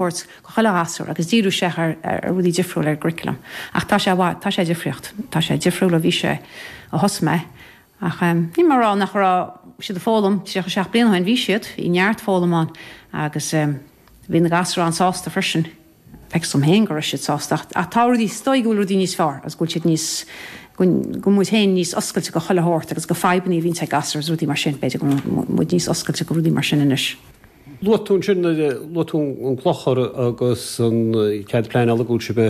thabhairt go chuile ghasúr agus díriú isteach ar rudaí difriúla ar an gcurriculum. Ach tá sé, tá sé difríocht. Tá sé difriúil ó bhí sé ó thosaigh mé. Ach níl mé a' rá nach raibh siad a' foghlaim, tríocha a seacht bliain ó shin, bhí siad, bhí neart foghlaim ann agus bhí na gasúir an-sásta freisin. Feictear dhom féin go raibh siad sásta. Ach tá rudaí, is dóigh go bhfuil rudaí níos fearr agus go bhfuil siad níos, go bhfuil muid féin níos oscailte go chuile shórt agus go fadhbanna a bhíonns ag gasúir is rudaí mar sin, b'fhéidir go bhfuil muid níos oscailte go rudaí mar sin anois. Luaigh tú ansin, luaigh tú an clochar agus an cead pleanála go bhfuil sibh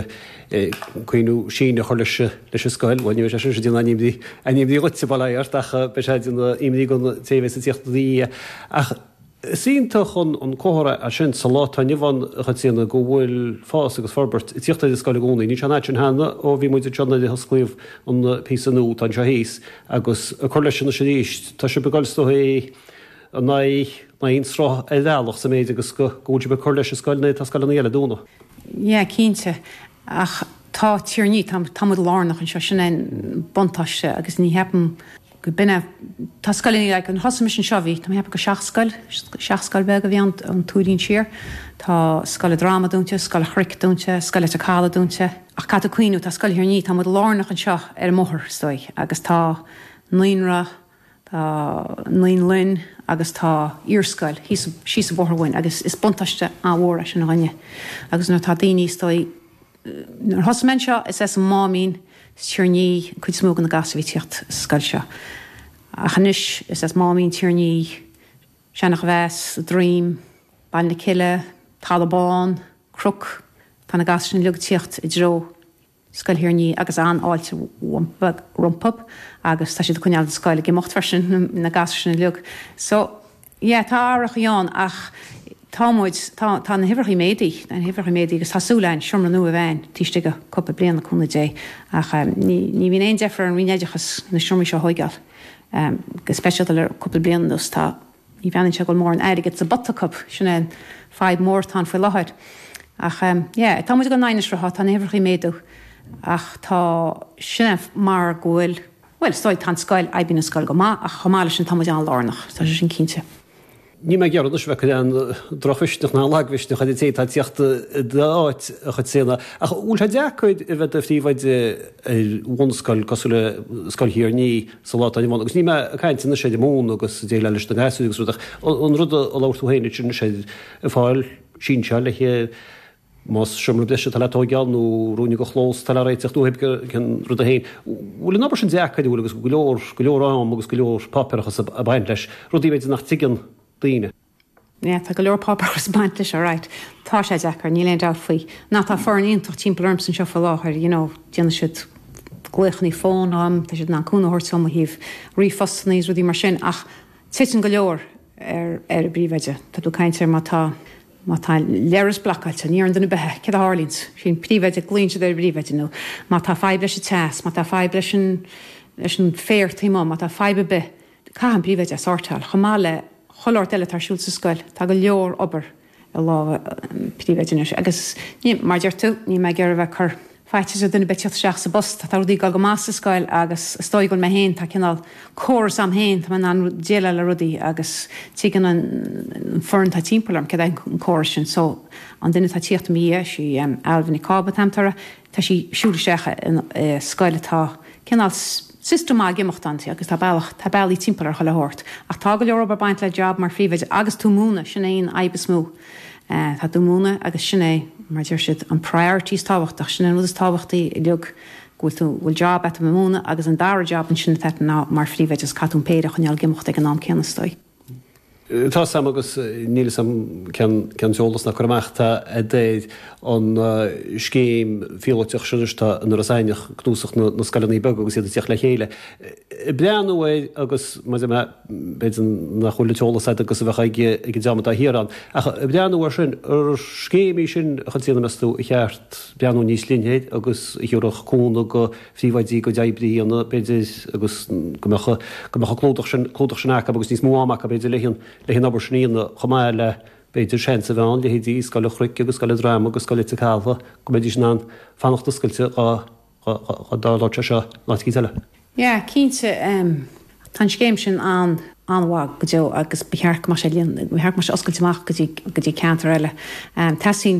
ag cuimhniú síneadh a chur leis leis an scoil. Bhuel, ní bheidh sé sin sin ina imní, imní dhuitse, bail ó Dhia ort, ach beidh sé ina imní gon té a bheidh ag tíocht i do dhiaidh. Ach is iontach an comhartha é sin sa lá atá inniu ann, a Chaitríona, go bhfuil fás agus forbairt ag tíocht ar an scoil i gcónaí. Níl sé an fhad sin cheana ó bhí muid anseo nuair a hosclaíodh an píosa nua atá anseo thíos agus ag cur leis anois arís. Tá sibh ag goil is dóigh i. in aghaidh an sruth ar bhealach sa méid agus go bhfuil sibh ag cur leis an scoil nuair atá scoileanna eile ag dúnadh. Yeah, cinnte. Ach tá Tír an Fhia, tá, tá muid lárnach anseo, sin é an buntáiste agus ní cheapaim go binne, tá scoileanna, like, nuair a thosaigh mise anseo bhí, tá, ceapaim gur seacht scoil, seacht scoil beag a bhí ann ón Tuairín siar, tá Scoil an Droma dúinte, Scoil an Chnoic dúinte, Scoil Leitir Calaidh dúinte, ach caithfidh tú cuimhniú, tá Scoil Thír an Fhia, tá muid lárnach anseo ar an mbóthar, is dóigh, agus tá naíonra, Tá naíolann agus tá iarscoil thíos síos an bóthar uainn agus is buntáiste an-mhór é sin dhúinne agus nuair atá daoine is dóigh, nuair a thosaigh mé anseo is as an Máimín, as Tír an Fhia, an cuid is mó de na gasúir a bhí ag tíocht sa scoil seo. Ach anois is as Máimín, Tír an Fhia, Seanachomheas, a' Droim, Baile na Cille, Talamh Bán, Cnoc, tá na gasúir sin uilig ag tíocht i dtreo, Scoil Thír an Fhia agus an-fháilte rompu agus tá siad ag coinneáil an scoil ag imeacht freisin na gasúir sin uilig. So, yeah, tá athrachaí ann ach tá muid, tá, tá na huimhreachaí ag méadú, tá na huimhreachaí ag méadú agus tá súil a'inn seomra nua a bheith a'inn taobh istigh de cúpla bliain le cúnamh Dé ach ehm ní, ní bhíonn aon deifir ar an Roinn Oideachas na seomraí seo a thóigeáil ehm go speisialta le cúpla bliain anuas tá Ní bhreathnaíonn sé go bhfuil mórán airgid sa bpota acu, sin é an fadhb mhór atá ann faoi láthair. Ach yeah, tá muid ag goil in aghaidh an tsrutha, tá na huimhreacha ag méadú ach tá, sin é mar go bhfuil, bhuel, is dóigh, tá an scoil, oibríonn an scoil go maith ach chomh maith leis sin tá muid an-lárnach, tá sé sin cinnte. Níl mé ag iarraidh anois a bheith ag cur aon drochmhisneach ná aon lagmhisneach ar an té atá ag tíocht i d'áit a Chaitríona ach an bhfuil sé deacair a bheith i do phríomhoide ar bhunscoil cosúil le Scoil Thír an Fhia sa lá atá inniu ann. Agus níl mé ag caint anois ar an múineadh agus ag déileáil leis na gasúir agus rud, ach an rud a labhair tú féin, Richard, anois ar fáil, sínseáil, más seomra breise atá le tóigeáil nó ruainne de chlós atá le réiteach, nó cibé cén rud é féin. Bhfuil an obair sin deacair, an bhfuil? Agus go leor, go leor am agus go leor páipéarachas ag baint leis, rudaí, b'fhéidir, nach dtuigeann daoine. Yeah, tá go leor páipéarachas ag baint leis seo, raight. Tá sé deacair, níl aon dabht faoi. Now, tá foireann iontach timpeall ormsa anseo faoi láthair, you know, déanann siad glaochanna fóin dhom, tá siad in ann cúnamh a thabhairt dhom ó thaobh ríomhphostanna is rudaí mar sin ach titeann go leor ar, ar an bpríomhoide. Tá tú ag caint ar má tá, má tá leithreas blocáilte, ní oireann do na beithe, céard a tharlaíonns? Sé an príomhoide, glaonn siad ar an bpríomhoide nó má tá fadhb leis an teas, má tá fadhb leis an, leis an féar taobh amuigh, má tá fadhb ar bith, Caithfidh an príomhoide é a shórtáil, chomh maith le chuile shórt eile atá ar siúl sa scoil. Tá go leor obair i lámha an phríomhoide anois agus ní, mar a deir tú, níl mé ag iarraidh a bheith ag cur faitíos ar dhuine ar bith tíocht isteach sa bpost. Tá rudaí ag dul go maith sa scoil agus is dóigh go bhfuil mé féin, tá cineál córas a'm féin, tá mé in ann déileáil le rudaí agus tuigeann an foireann atá timpeall orm céard é an córas sin. So, an duine atá ag tíocht i mo dhiaidh, sí Ailbhe Nic Cába atá aim, Tora. Tá sí ag siúl isteach i scoil, tá cineál system ag imeacht ann agus tá bealach, tá bealaí timpeall ar chuile shórt. Ach tá go leor obair ag baint le job mar phríomhoide agus tú ag múineadh, sin é an fhadhb is mó. Tá tú ag múineadh agus sin é, mar a deir siad, an priority is tábhachtaí, sin é an rud is tábhachtaí uilig, go bhfuil tú, bhfuil job a'at a bheith ag múineadh agus an dara job ansin atá a'at ná mar phríomhoide agus caithfidh tú an péire a choinneáil ag imeacht ag an am céanna is dóigh. Tá 'fhios a'm agus níl 'fhios a'm cén t-eolas ná cur amach atá a'd ar an scéim phíolóiteach sin anois atá in Iorras Aithneach, cnuasach na scoileanna beaga agus iad ag tíocht le chéile ag breathnú air agus mar a deir mé, b'fhéidir nach bhfuil an t-eolas a'd agus a bheadh ag an dream atá thiar ann ach ag breathnú air sin ar scéim í sin a Chaitríona, meas tú, ar cheart breathnú níos leithne air agus a thiúrfadh cúnamh do phríomhoidí a gcuid oibre a dhéanamh, b'fhéidir, agus go mbeadh an clúdach sin acu agus níos mó ama acu, b'fhéidir, leis an obair sin a dhéanamh, chomh maith le, b'fhéidir, seans a bheith ann, leithéidí Scoil an Chnoic agus Scoil an Droma agus Scoil Leitir Calaidh, go mbeidís in ann fanacht oscailte dhá labhairt sé seo in áit eicínt eile. Yeah, cinnte, tá an scéim sin an-mhaith go deo agus ba cheart go mbeadh sé oscailte amach go dtí ceantair eile. Teastaíonn.